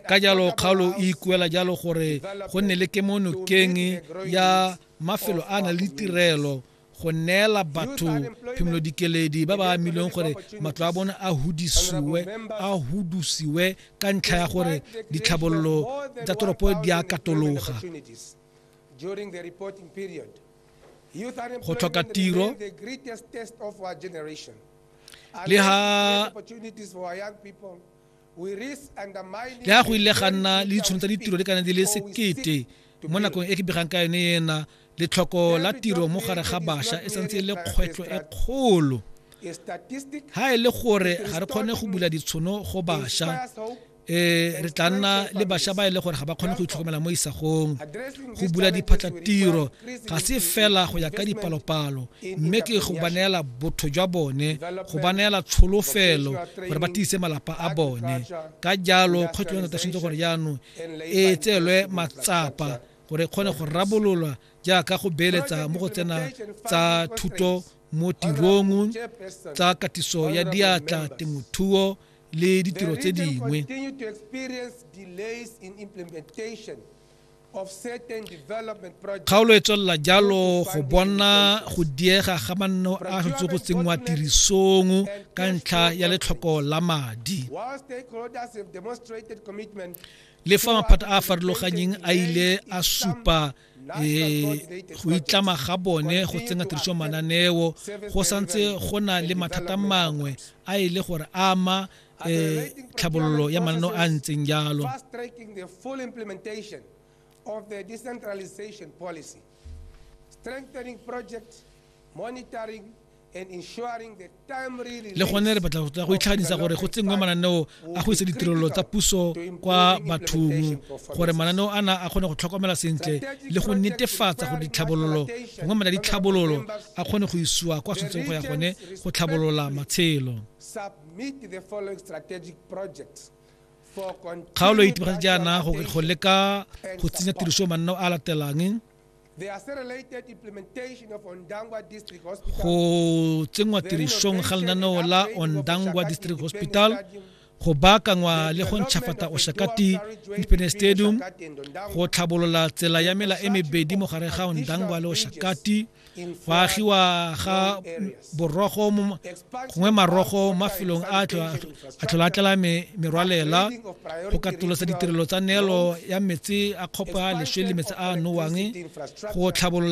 ka jalo kgaolo e ikuela jalo gore go nne le kemonokeng ya mafelo a na le tirelo go neela batho phimolo dikeledi ba ba amilweng gore matlo a bone a hudisiwe a hudusiwe ka ntlha ya gore ditlhabololo tsa toropo di a katologa go tlhoka tiro le ha le a go ile ga nna le ditshono tsa ditiro di kana di le sekete mo nakong e ke begang ka yone ena letlhoko la tiro mo gare ga bašwa e santse e le kgwetlho e kgolo ha e le gore ga re kgone go bula ditshono go bašwa um re tla nna le bašwa ba e le gore ga ba kgone go itlhokomela mo isagong go bula diphatlatiro ga se fela go ya ka dipalopalo mme ke go ba neela botho jwa bone go ba neela tsholofelo gore ba tiise malapa a bone ka jalo kgwetlho ya tshwanetse gore jaanong e tseelwe matsapa gore e kgone go rabololwa jaaka go beeletsa mo go tsena tsa thuto mo tirong tsa katiso ya diatla temothuo le ditiro tse dingwe Kgaolo e tswelela jalo go bona go diega ga manno a go go tsenngwa tirisong ka ntlha ya letlhoko la madi le fa maphata a a farologanyeng a ile a supa Eh, go itlama ga bone go tsenya tiriso mananeo go santse go na le mathata mangwe a e le gore ama eh, tlhabololo ya mananeo a ntseng jalo of the decentralization policy, strengthening projects, monitoring le gone re batla go go itlhaganisa gore go tsenngwe mananeo a go isa ditirelo tsa puso kwa bathong gore mananeo ana a kgone go tlhokomela sentle le go netefatsa gore ditlhabololo gongwe mela ditlhabololo a kgone go isiwa kwa tshwanetseng go ya gone go tlhabolola matshelo kgaolo e itemogetse jaana go leka go tsenya tiriso mananeo a latelang go tsenngwa tirisong ga lenaneo la ondangwa district hospital go baakangwa le go ntšhafata oshakati independence stadium go tlhabolola tsela ya mela e mebedi mo gare ga ondangwa le oshakati go agiwa ga borogo gongwe marogo mafelong a tlhola a tlala merwalela go katolosa ditirelo tsa neelo ya metsi a kgopa leswe le metsi a nowang go tlhabolola